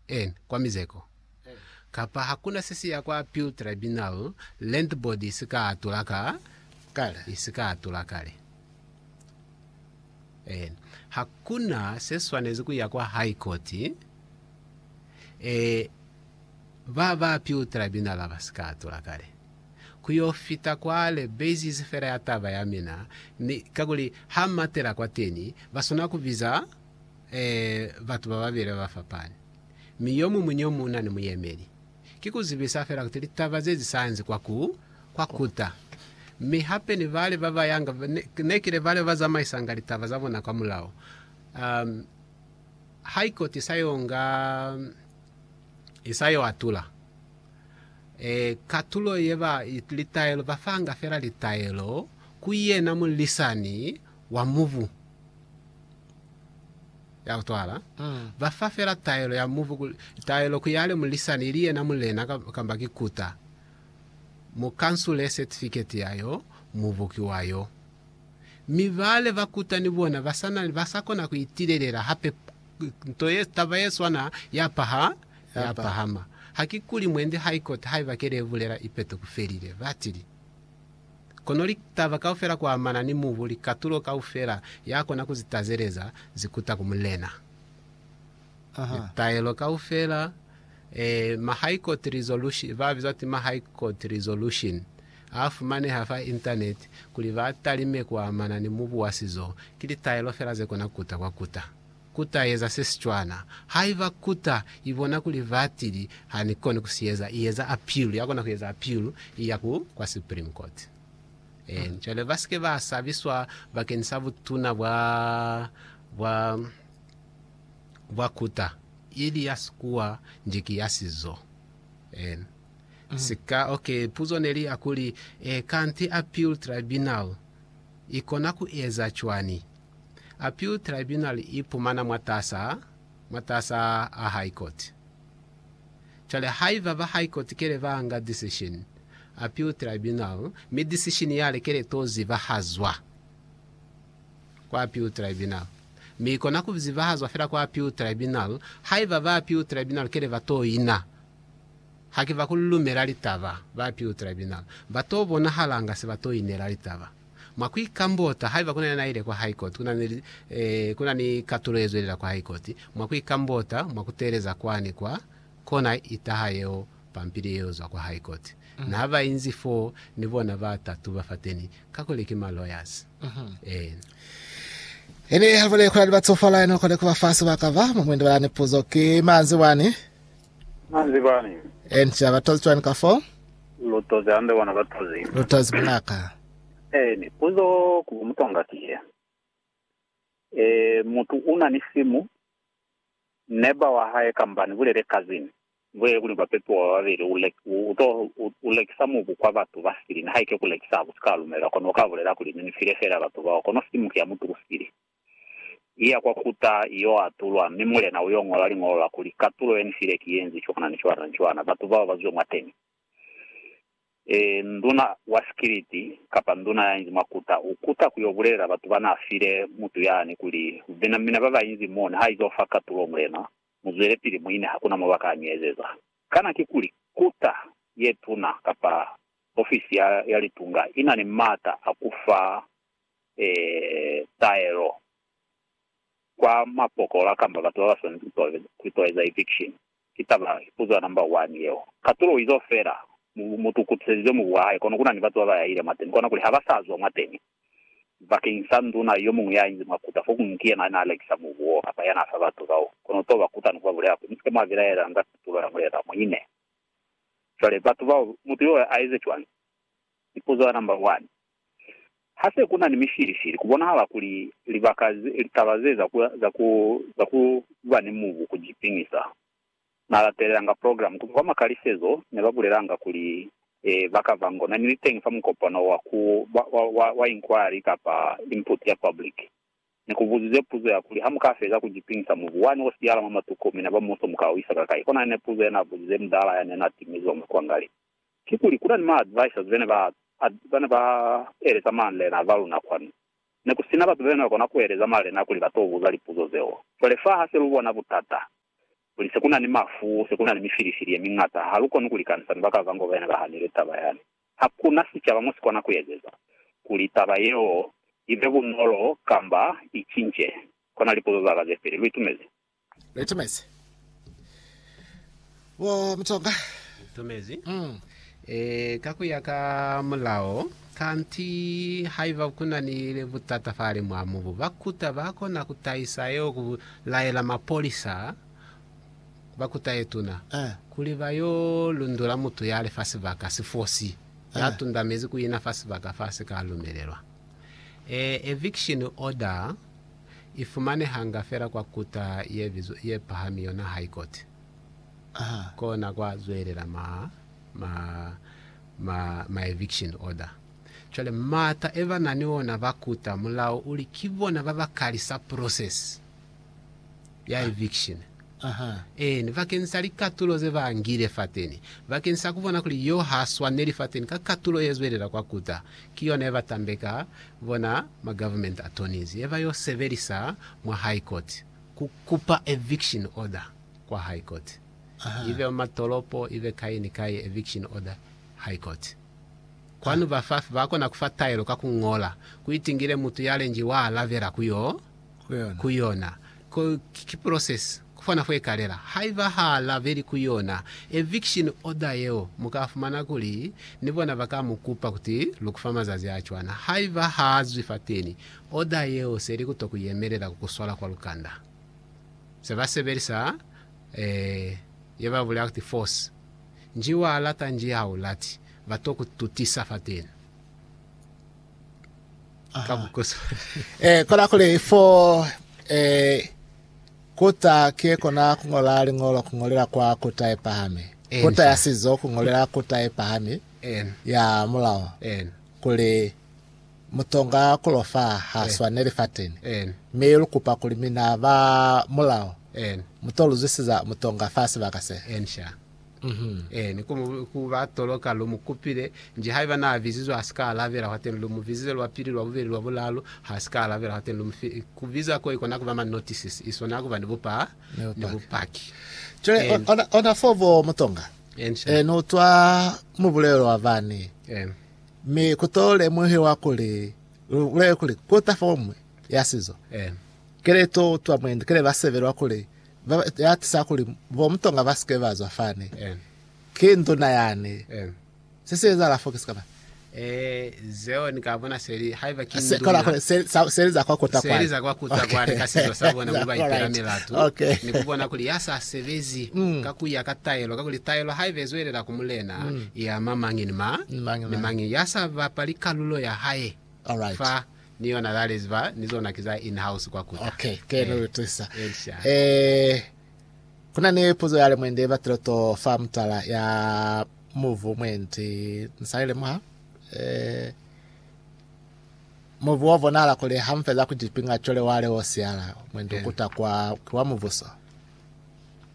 en, kwa mizeko, kapa hakuna se si ya kwa appeal tribunal, land board isi ka atula ka, Kale. isi ka atula kale. En, hakuna se swanezi ku ya kwa high court, eh, ba ba appeal tribunal ba si ka atula kale. Ku yo fita kwale, basis fela ya taba ya mina, ni kakuli ha matela kwateni, ba swana ku biza, Ee, batu bababeli babafapani, mi yomuñwi ni yomuñwi una ni muyemeli. Ki kuzibisa fela kuti litaba ze zisayansi kwa ku kwa kuta. Mi hape ni bale babayanga, nekile bale babazamaisanga litaba zabona kwa mulao. Um, High Court isayo nga, isayo atula. E, katulo yeba litaelo, bafanga fela litaelo ku yena mulisani wa mubu ya kutwala, ba fa fela taelo ya mubu kuli taelo ku yale mulisani ili yena mulena kamba ki kuta mu kansule setifiketi ya yo mubu ki wa yo. Mi bale ba kuta ni bona ba sa na ba sa kona ku itilelela hape nto ye taba ye swana ya paha ya pahama. Hakikuli mwendi High Court haiba kele ye bulela ipeto ku felile, ba tili. Kono litaba kaufela kuamana ni mubu, likatulo kaufela, yakona kuzitazeleza, zikuta ku Mulena. Litaelo kaufela, ee, ma High Court Resolution, ba bizwa ti ma High Court Resolution, a fumaneha fa Internet, kuli ba talime kuamana ni mubu wa sizo, ki litaelo fela zekona kuta kwa kuta. Ku ta eza se si cwana. Haiba kuta i bona kuli batili ha ni koni ku si eza, i eza apilu, ya kona ku eza apilu, i ya ku kwa Supreme Court. Eeni. Cwale ba si ke ba sabiswa bakeni sa butuna bwa, bwa, bwa kuta, ili ya sikuwa nji ki ya sizo. Eeni. Sika, ok, puzo ne li ya kuli, e, kanti apilu tribunal i kona ku eza cwani? Appeal Tribunal i ipumana mwatas'a mwatas'a a High Court. Cwale haiba ba High Court kele ba anga decision, Appeal Tribunal, mi decision yale kele to zibahazwa kwa Appeal Tribunal, mi ikona ku zibahazwa fela kwa Appeal Tribunal haiba ba Appeal Tribunal kele ba to ina. Hakiba ku lumela litaba, ba Appeal Tribunal ba to bonahalanga se ba to inela litaba. Mwa ku ikambota, haiba kuna yena aile kwa High Court, kuna ni, eh, kuna ni katulo yezwelela kwa High Court, mwa ku ikambota, mwa kuteeleza kwani kwa, kona itaha yeo pampili yeo zwa kwa High Court. Na ba inzi foo, ni bona ba tatu ba fateni, kakuli ki ma lawyers. Eh. Ini haliboneli kula ni ba tsofala, yani ukone kuba fa sebaka ba. Mwa mwendo wa lani puzo ki, Manzi wani, Na zibañi? Ee, nzila ba tozi cwañi ka foo? Lu tozi hande bona ba tozi. Lu tozi bunaka. Ee, mi puzo ku bo mutwanga ki ye. Ee, mutu una ni simu, neba wa hae kamba ni bulele cousin, ni bulele kuli ba pepiwa ba babeli, u lek, u, u to, u, u lekisa mubu kwa batu ba sili, nihaike ku lekisa ha ku si ka lumela, kono u ka bulela kuli, Ni ni file fela batu bao, kono simu ki ya mutu u sili. iya kwa kuta iyo atulwa, mi mulena uyo ngola liñolo la kuli, Katulo ye nifile ki yenzi cwana ni cwana ni cwana, batu bao bazwe mwateni. E, nduna wa sikiliti, kapa nduna yainzi mwa kuta, ukuta kuyo bulelela batu bana file mutu yani kuli, Mina, mina babainzi mo, niha izo fa katulo, mulena, muzwelepili muine, hakuna mo baka ni ezeza. Kana kikuli kuta yetuna kapa ofisi ya, ya litunga inani maata a kufa taelo kwa mapokola kamba batu ba ba swanezi ku itwaleza eviction. Ki taba, ki puzo ya number one yeo. Katulo izo fela, mutu u kutiselize mubu wa hae, kono ku na ni batu ba ba yahile mwateni, kona kuli ha ba sa zwa mwateni bakeñi sa nduna yo muñwi ya inzi mwa kuta, fokuñwi ki yena a ne a lekisa mubu woo kamba ya n'a fa batu bao. Kono u t'o ba kuta ni ku ba bulela kuli, Mu si ke mwa bilaelanga katulo ya mulena, mu ine. Cwale batu bao, mutu yoo a eze cwañi? Lipuzo ya namba 1, Ha se ku na ni mifilifili, ku bonahala kuli libaka ze, litaba ze za ku, za ku, za ku ba ni mubu ku ji piñisa. Na latelelanga programu ku zwa kwa makalisezo, ne ba bulelanga kuli, e, ba ka ba ngo na ni liteñi fa mukopano wa ku, wa, wa, wa, wa inquiry kapa input ya public. Ne ku buzizwe puzo ya kuli, Ha mu ka feza ku ji piñisa mubu wani o siyahala mwa matuku, mina ba muso mu ka u isa kakai? Kona yene puzo ya n'a buzize mudala ya ne n'a timizwa mwa kuangali. Kikuli kuna ni ma advisors bene ba bane ba eleza malena ba luna kwanu. Nekusina batu bene bakona kueleza malena kuli ba to buza lipuzo zeo. Cwale fa hase lu bona butata, kuli se kuna ni mafu, se kuna ni mifilifili ye miñata, ha lu koni ku likanisa ni baka bango bene ba hanile taba yani. Ha kuna sicaba mo si kona ku ezeza kuli taba yeo ibe bunolo kamba i cince. Kona lipuzo zaka ze peli. Lu itumezi? Litumezi bo Mutsonga. Litumezi mm. E, ka ku ya ka mulao, kanti haiba ku na ni butata fale mwa mubu, ba kuta ba kona ku tahisa yo ku laela mapolisa ba kuta ye tuna Eh. kuli ba yo lundula mutu ya li fa sibaka, sifosi, ya Eh. tundamezi ku ina fa sibaka fa si ka lumelelwa. E, eviction order I fumanehanga fela kwa kuta ye bizwa, ye pahami yona High Court. Aha. Kona kwa zwelela ma, ma, ma, ma eviction order. Cwale mata e ba na ni ona ba kuta mulao uli ki bona ba ba kalisa process. ya eviction, eeni, bakeni sa likatulo ze ba ngile fateni, bakeni sa kubona kuli yo ha swaneli fateni ka katulo ye zwelela kwa kuta, ki yona ye ba tambeka bona ma government attorneys, ye ba yo sebelisa mwa High Court ku kupa eviction order kwa High Court, ibe mwa tolopo, ibe kai ni kai, eviction order High Court. Kwanu ba fa, ba kona kufa taelo ka ku ngola, ku itingile mutu ya lengi wa alabela ku yo. ku yona. Ki process kufana fo ikalela. Haiba ha la beli ku yona eviction order yeo, mu ka fumana kuli ni bona ba ka mu kupa kuti lu ku fa mazazi a cwana. Haiba ha zwi fateni, order yeo se li ku to ku yemelela ku ku swala kwa lukanda. Se ba sebelisa ye ba bulela kuti force. Nji wa lata nji ha u lati, ba to ku tutisa fateni. ka bukusu. Eh, kola kuli fo eh, kuta ke kona kungola lingolo kungolela kwa kuta e pahami Eni kuta ya sa. sizo kungolela kuta e pahami En, ya mulao en, kuli mutonga kulofa ha Eh. swaneli fateni en, mi lukupa kuli mina ba mulao en, muto luzwisiza mutonga fa sibaka se en sha. Ee, ni ku, ku ba toloka, lu mu kupile. Nji haiba na bizizwe ha si ka alabela, hwateni lu mu bizize lwa pili, lwa bubeli, lwa bulalu, ha si ka alabela, hwateni lu mu fi. Ku biza ko i kona ku ba ma notices, i swana ku ba ni bupa, ni bupaki. Cwale And- ona, ona fo bo Mutonga, And sha. eh, ni utwa mubulelo wa bani, Eh, mi ku to lemuhiwa kuli, lu bulele kuli, ku ta fo mwi ya sizo. eh, Kele to utwa mwendi, kele ba sebelwa kuli, ba atisa kuli bo mutonga ba sike ba zwa fani ki nduna yani se si ezahala fo kisi kama Eh, zeo ni ka bona seli haiba ki se kola nduna se sa- se za kwa kota seli za kwa kuta kwani ka sizo sa bona kuli ba ipela Alright. milatu Okay. ni ku bona kuli ya sa sebezi Mm. ka ku ya ka taelo ka kuli taelo haiba e zwelela ku mulena i ama mañi ni ma Ni mañi ni mañi. mañi ya sa bapali kalulo ya hae Alright. fa Ni yona lale ziba ni zona ki za in house kwa kuta. Okay, ke no utwisa. Esha. Eh, kuna ni puzo ya lemwende ba tiloto fa mutala ya muvu mwendi nsali lemuha. Eh, muvu wa bonala kuli ha mfeza ku cipinga cole wa leo siala mwendi Yeah. ukuta kwa kiwa muvuso.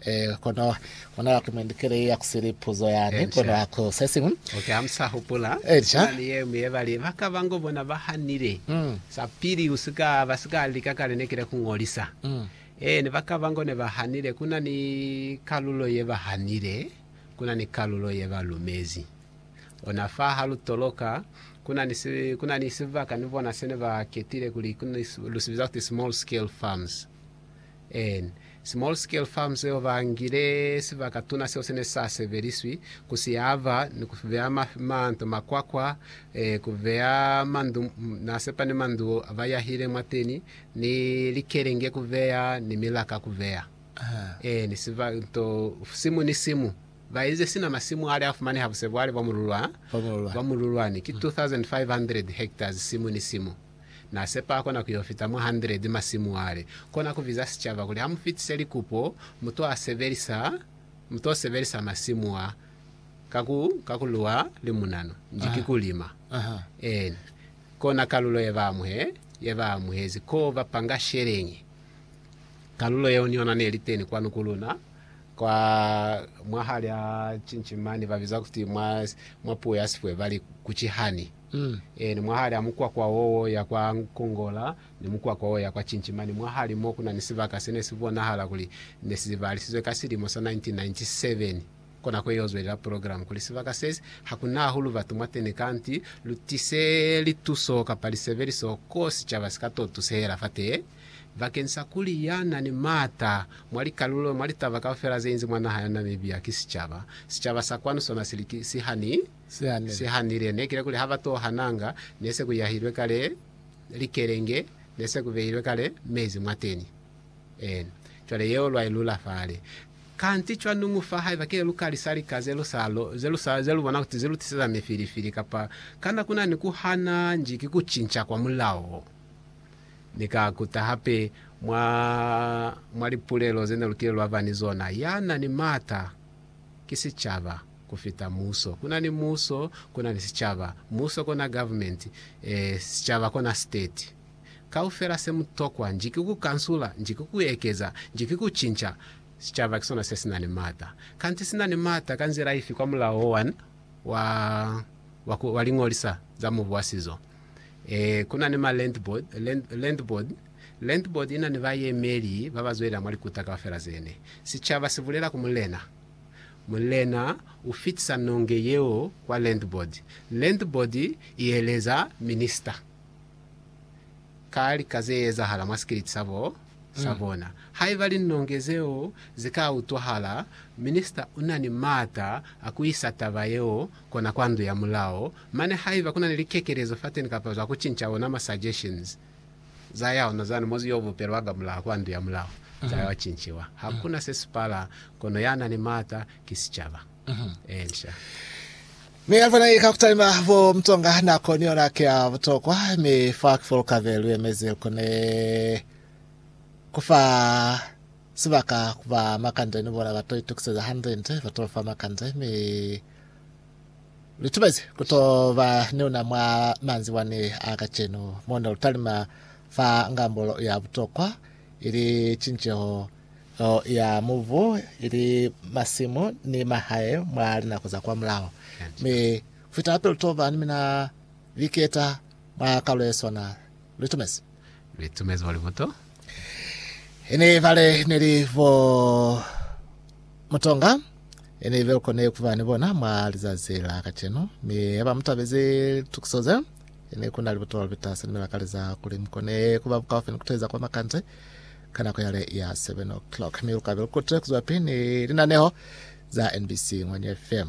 Eh, kono mona wa kumendikele ya kusili puzo yani Echa. kono ako sesimu Okay, amsa hupula. Echa. Kuna ni yemu ye bali baka bango bona bahanile. Mm. Sa pili usika basika lika kale ne kile kungolisa. Mm. Eh, ni baka bango ne bahanile kuna ni kalulo ye bahanile, kuna ni kalulo ye balumezi. Ona fa ha lu toloka kuna ni si, kuna ni sibaka ni bona sene ba ketile kuli kuna ni si- lu sibiza kuti small scale farms. en. Small Scale Farms yeo ba ngile sibaka tuna seo se ne sa sebeliswi ku si aba ni ku beya manto, makwakwa, eh, ku beya mandu, na sepa ni mandu a ba yahile mwateni, ni likelenge ku beya, ni milaka ku beya. En. Siba, nto, simu ni simu. Ba ize sina masimu ale a fumaneha busebwale bwa mululwa, bwa mululwani, ki 2,500 hectares simu ni simu. Na sepa kona ku yo fita mwa 100 masimu ale. Kona ku biza sicaba kuli ha mu fitise likupo, mu to sebelisa, mu to sebelisa masimu a ka ku, ka ku luwa limunanu. Nji ki ku lima. Eena. Kona kalulo ye ba amuhe, ye ba amuhezi. Ko ba panga sheleñi. Kalulo yeo ni yona ne li teni kwanu ku luna, kwa, mwa hali a cinci mani, ba biza kuti mwa, mwa puo ya Sipwe ba li, ku ki honey. Ee, ni mwahali a mukwakwa wo wo ya kwa Nkongola ni mukwakwa wo ya kwa Chinchima, ni mwahali mo ku na ni sibaka se ne si bonahala kuli ne si zibahalisizwe ka silimo sa 1997. Kona kwe yo zwelela programu kuli sibaka sesi ha ku na hahulu batu mwateni kanti lu tise lituso kapa lisebeliso ko sicaba si ka to tusehela fatee, bakeñisa kuli ya na ni maata mwa likalulo mwa litaba kaufela ze inzi mwa naha ya Namibia ki sicaba. Sicaba sa kwanu sona si li ki, si hani. Se hanile ne kile kuli ha ba to hananga, ne se ku yahilwe kale likelenge, ne se ku behilwe kale mezi mwateni. Ee, cwale yeo lwa i lula fale. Kanti cwanuñu fa haiba ki ne lu ka lisa lika ze lu sa, ze lu sa, ze lu bona kuti ze lu tiseza mifilifili, kapa kana ku na ni ku hana nji ki ku cinca kwa mulao, Ni ka kuta hape mwa, mwa lipulelo ze ne lu kile lwa ba ni zona, ya na ni m'ata ki sicaba. Ku fita muso, ku na ni muso, ku na ni sicaba. Muso kona government, e, sicaba kona state. Kaufela se mu tokwa nji ki ku kansula, nji ki ku ekeza, nji ki ku cinca. Sicaba ki sona se si na ni maata. Kanti si na ni maata ka nzila ifi kwa mulao o wani wa, wa ku, wa liñolisa za mubu wa sizo? E, ku na ni ma land board, land, land board. Land board i na ni bayemeli ba ba zwelela mwa likuta kaufela zene. Sicaba si bulela ku mulena, Mulena u fitisa nonge yeo kwa Landboard. Landboard i eleza Minista ka lika ze ezahala mwa sikiliti sa bo sa bona. Haiba linonge zeo ze ka utwahala, Minista u na ni maata a ku isa taba yeo kona kwa Ndu ya Mulao, mane haiba ku na ni likekelezo fateni kapa zwa ku cinca ona ma suggestions, za ya ona zani muzi yo bupelwa ka mulaho kwa ndu ya mulaho, za yo cinciwa. Hakuna se si pala, kono ya na ni maata ki sicaba. Inca. Mi Alfa na ika kutalima bo mtonga nako ni yona ki ya butokwa, mi fa ki fo lukabe lu yemezi lu kone kufa sibaka ku ba makande ni bona ba to itukiseza hande nde ba to fa makande, mi Lutubezi kutoba niuna mwa manzibwani a kacenu, mono lutalima fa ngambo ya butokwa, ili cinceho ya mubu, ili masimu ni mahae mwa linako za kwa mulaho. Mi kufita hape lutoba ni mina liketa mwa kalu yeswana. Litumezi. Litumezi mwa libuto. Ine ibale neli bo Mutonga ine ibe ukone kuba ni bona mwa lizazi la kacenu, mi haba mutabezi litukiso ze, ine kuna libuto lipita seli milakaleza kuli mukone kuba bukaufi ni kuteza kwa makande ka nako yale ya 7:00, mi lukabe lukute kuzwapi ni linaneho za NBC Ngwanyo FM.